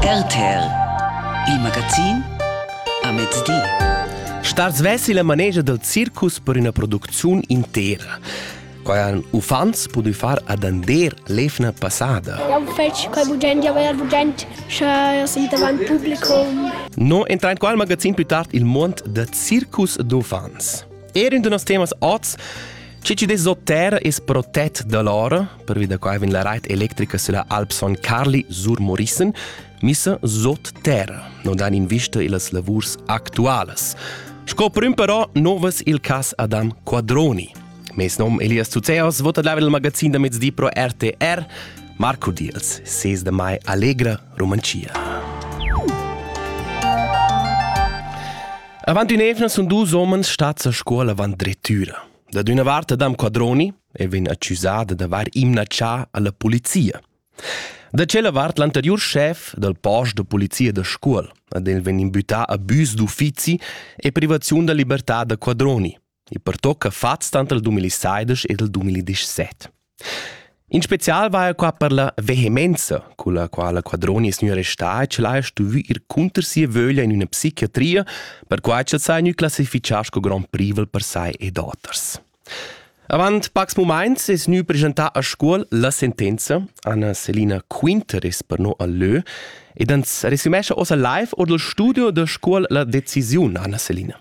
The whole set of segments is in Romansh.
RTL Il magazin a mezdi. Star svessi la manegia del circus per üna producziun intera. Quai han uffants pudü far ad Ander l'evna passada. Eu fetsch quai bugend, jau er bugend, sche eu sin davant publicum. No entra in qua al magazin più tard il mond da circus d'uffants. Er in de nos temas oz, che ci des terra es protett da loro, Pervi da quai vegn la rait electrica sulla Alp Son Carli sur Morissen missa sot terra, non dan in vista illas lavurs actualas. Sco prim però novas il cas Adam Quadroni. Mes nom Elias Zuzeos vota dava il magazin da mezdi pro RTR. Marco Diels, 6 de mai, Allegra, Romancia. Avant un'evna sono due uomini stati a scuola avant drettüra. Da una parte Adam Quadroni, e vegn accusada d'avair imnatschà a la polizia. Da tschella vart l'anteriur schef dal post da polizia da Scuol, ad el vegn imbütà abüs d'uffizi e privaziun da libertà da quadroni. e pertocca fats tant il 2016 ed il 2017. In spezial va qua per la vehemenza, con la quala quadroni es gnü arrestà e ch'el haja stuvü ir cunter sia vöglia in üna psichiatria, per quai ch'el s'ha gnü classifichà sco grand privel per sai ed oters. Avant pacs mumaints es gnü presentà a Scuol la sentenza. Anna Selina Quinter es per no al lö ed ans resümescha ossa live or dal studio da Scuol la decisiun, Anna Selina.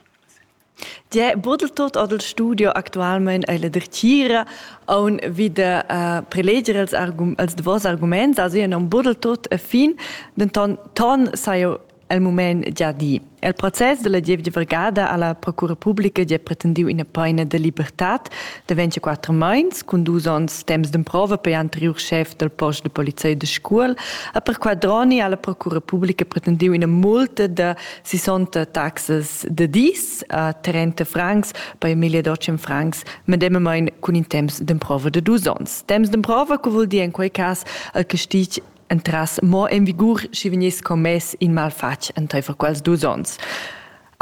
Diä Buddeltot ad il studio actualmain è la dretgira on wieder uh, preleger als, argum als davos arguments, also ja non buddeltot a fin, denton ton saja el mument già di. Il process della gievgia vergada alla Procura Pubblica gi ha pretendiu ina paina de libertad de 24 meins cun dus onns temps d'emprova per anteriur chef del post de polizei de scuol a per quadroni alla Procura Pubblica pretendiu ina multa de 60 taxas de dis a 30 francs per Emilia Docem francs medemmamein cun in temps d'emprova de dus onns. Temps d'emprova co vul dir in quei cas al castig entras mo en vigur schi vegniss commess in malfatg entaifer quels dus onns.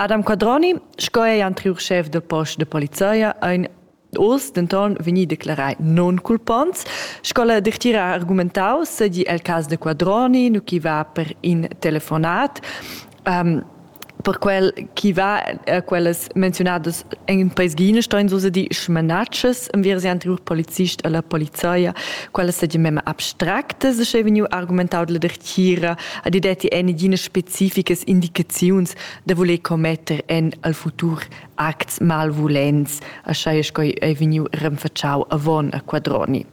Adam Quadroni, sco ei anteriur chef de post de polizia, ein oz denton vegni declarai non culponts. Sco la dertira ha argumentau, sedi el cas de Quadroni, nu chi va per in telefonat. Um, per quel chi va a quellas menzionadas in presgina stein so di schmanatschas am wir sie anterior polizist alla polizia quella sa di mema abstracte se sche vegnu argumentau la dertira a di detti eine dine spezifisches indicaziuns da voler commetter en al futur acts malvulents a schai es coi ei vegnu renfacciau avon a quadroni.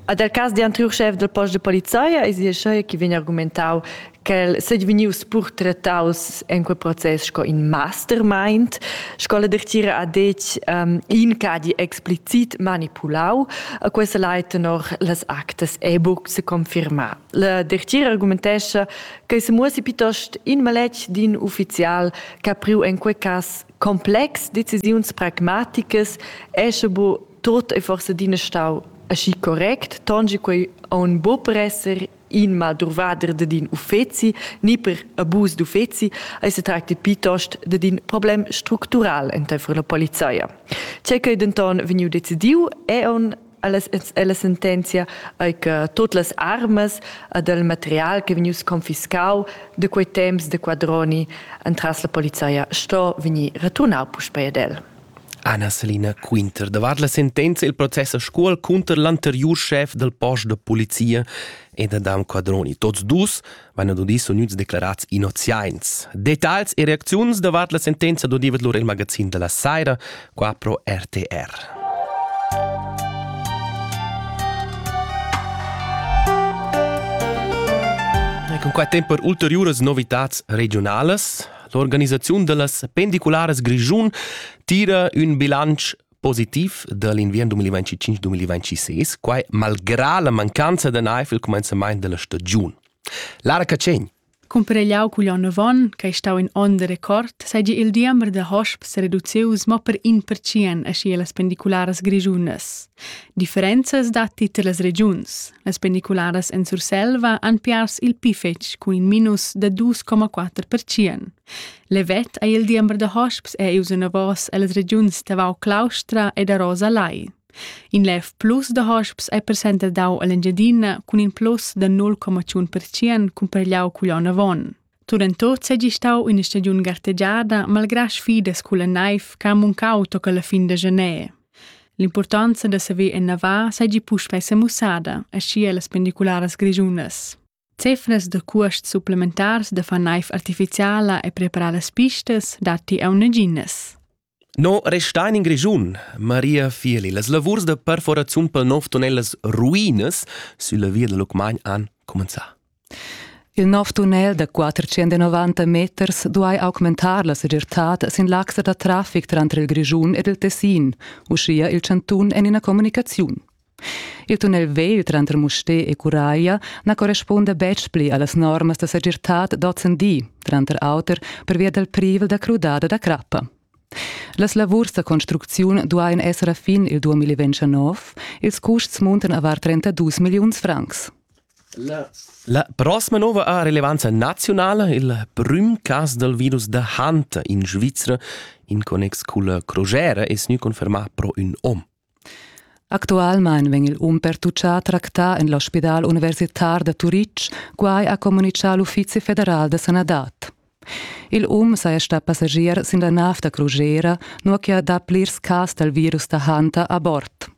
A der cas de anterior chef del post de polizia es ia schai chi vegn argumentau quel sei vegnius purtretaus en quei process sco in mastermind, sco la dertira ha detg um, in che ha di explicit manipulau, a questa lai tenor las actas è buc se confirma. La dertira argumentescha che se muossi piuttost in maletg d'in ufficial che ha priu en quei cass complex decisiuns pragmaticas è sche bu tot e forse din stau aschi correct, tongi quei on bo per esser in madruvader dad in uffeci ni per abus d'uffeci ei se tracti piuttost dad in problem structural enteifer la polizia. Tgei ch'ei denton vegniu decidiu è on alla sentenzia ei che tot las armas ed il material che vegnius confiscau de quei temps de quadroni entras la polizia sto vegnir returnau puspei ad el. Ana Selina quinter davart la sentenza il process a scuol cunter l'anteriur schef dal post da polizia ed Adam Quadroni. Tots dus vanno dudis uniuts declarats innoziains. Details e reacziuns davart la sentenza dodevet lur il magazin della Saira qua pro RTR. Con qua tempo per ulteriores novitats regionales L'organisaziun dallas pendicularas Grischun tira ün bilancio positiv dall'inviern 2025-2026, quai malgrà la mancanza da naiv il cumenzament della stagiun. Lara Cacegn Cumparegliau cugl onn avon, che ei stau in onn de record, seigi il diember da hosps sereduceus mo per in pertschien aschi las pendicularas grischunas. Differenzas datti tar las regiuns. Las pendicularas en Surselva han pers il pli fetg cun in minus da 2,4%. Levet ei il diember da hosps è ius enavos ellas regiuns da Vau Claustra e da Rosa Lai. In lev plus da hosps è percenter dau all'Engiadina cun in plus da 0,1% cumparigliau cugl onn avon. Tunentot seigi stau üna stagiun gartegiada malgrà sfidas culla naiv che ha muncau toca la fin da janer. L'impurtanza da saver ennavar seigi puspei semussada, aschia las pendicularas grischunas. Cefras da cuosts supplementars da far naiv artificiala e preparar las pistas datti aunc naginas. No restain in Grischun, Maria Fieli. Las lavurs da perforaziun pel nov tunnel las ruinas sülla via da Lucmagn han cumenzà. Il nov tunnel da 490 meters duai augmentar la segirtad sin l'axa da traffic tranter il Grischun ed il Tessin, uschia il chantun en ina communicaziun. Il tunnel vegl tranter Mustér e Curaglia na correspunda betg pli a las normas da segirtad d'ozendi, tranter auter pervia dal privel da crudada da crappa. Las lavurs da construcziun duain esser a fin il 2029. Ils custs muntan a var 32 milliuns francs. La prossima nova ha relevanza nazionala, il prüm cas dal virus da Hunt in Svizra in connex cun la crogera es gnü confermà pro ün om. Actualmain vegn il um pertutgà tractà en l'ospidal universitar da Turitg, quai ha communitgà l'Uffizi federal da sanadad. Il um saja stà passagier sin la nav da crugera, nua che ha dà plirs cas dal virus da Hanta a bord.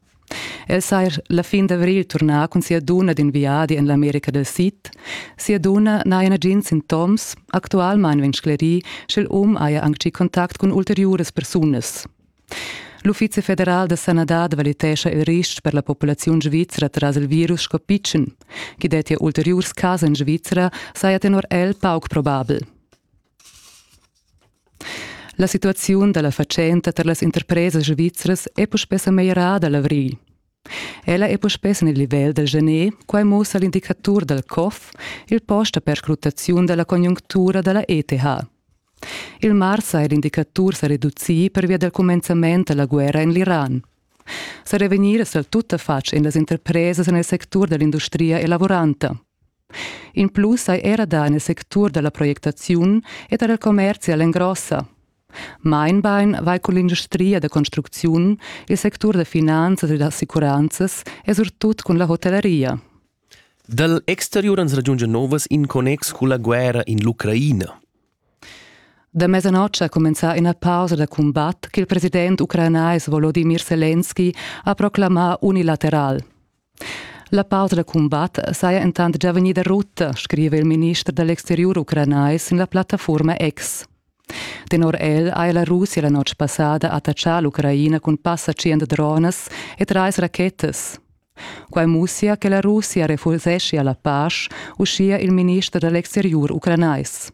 El saja la fin d'avrigl turnà cun sia dunna d'in viadi en l'America del Sid. Sia dunna n'haja nagins sintoms. Actualmain vegn sclerì, sch'il um haja anc gì contact cun ulteriuras persunas. L'Uffizi federal da sanadad valitescha il ristg per la populaziun svizra tras il virus sco pitschen. Chi dettia ulteriurs cas en Svizra saja tenor el pauc probabel. La situaziun da la fatschenta tar las interpresas svizras è puspè sa meglierada l'avrigl. Ella è puspè en il livel dal gener, quai mussa l'indicatur dal COF, il post da perscrutaziun da la conjunctura da la ETH. Il mars ha er indicatur sa reducì pervia dal cumenzament da la guerra en l'Iran. Serevegnir sal tuttafatg en las interpresas en il sectur da l'industria e lavoranta. In plus hai era dà en il sectur da la projectaziun e da la commerzi a l'engrossa. Meinbein vai con l'industria da construcziun, il sectur da finanzas e da assicuranzas e surtut con la hotelleria. Dal exteriur ans ragiungia novas in connex culla guerra in l'Ucraina. Da mesanotg ha cumenzà ina pausa da cumbat ch'il president ucranais Volodimir Selenski ha proclamà unilateral. La pausa da cumbat saja entant già vegnida rutta, scriva il minister dall'exteriur ucranais sin la plattafurma X. Tenor el ha la Russia la notg passada attachà l'Ucraina cun passa tschient dronas e trais rachetas. Quai mussia che la Russia refuseschia la pasch, uschia il minister da l'exteriur ucranais.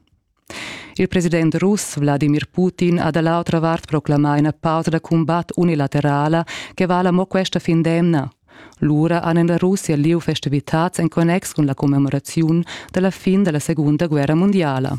Il president russ Wladimir Putin ha da l'autra vart proclamà ina pausa da cumbat unilaterala che vala mo questa fin d'emna. Lura han en la Russia lieu festivitads en connex cun la commemoraziun dalla fin della Segunda Guerra Mondiala.